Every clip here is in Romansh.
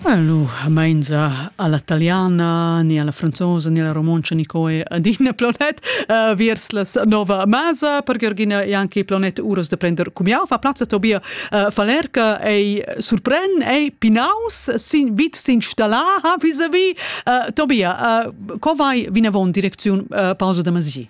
Allo, mainza alla italiana, ni alla franzosa, ni alla romoncia, ni coe adina planet, uh, viers las nova masa, per Georgina e anche planet uros de prender cumiau, fa plazza Tobia uh, Falerca ei surpren, ei pinaus, sin, vid s'installaha vis-a-vis. Uh, Tobia, uh, co vai vinavon direcziun uh, pausa de masi?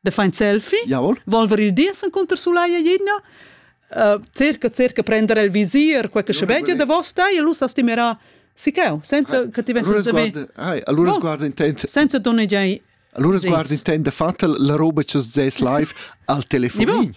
De fa in selfie, Jawohl. volver il dies encunter Sulaya Jinna, uh, cerca, cerca prender il visier, quel che sveglia de vosta e lui s'astimerà sicao, senza che ti vesses de me. Allora guarda intend. Senza donnegiai Allora guarda intend, fatto la roba che ses live al telefonin.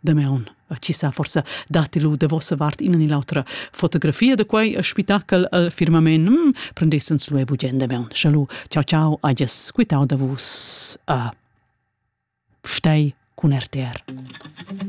Damaun chi sa forsa datti lu da vossa vart ina ni l'autra fotografia da quei spitachel al firmament mm, prendessens lu e bugien damaun. Chalu, ciao ciao, adies, quitau da vus a Stei cun RTR.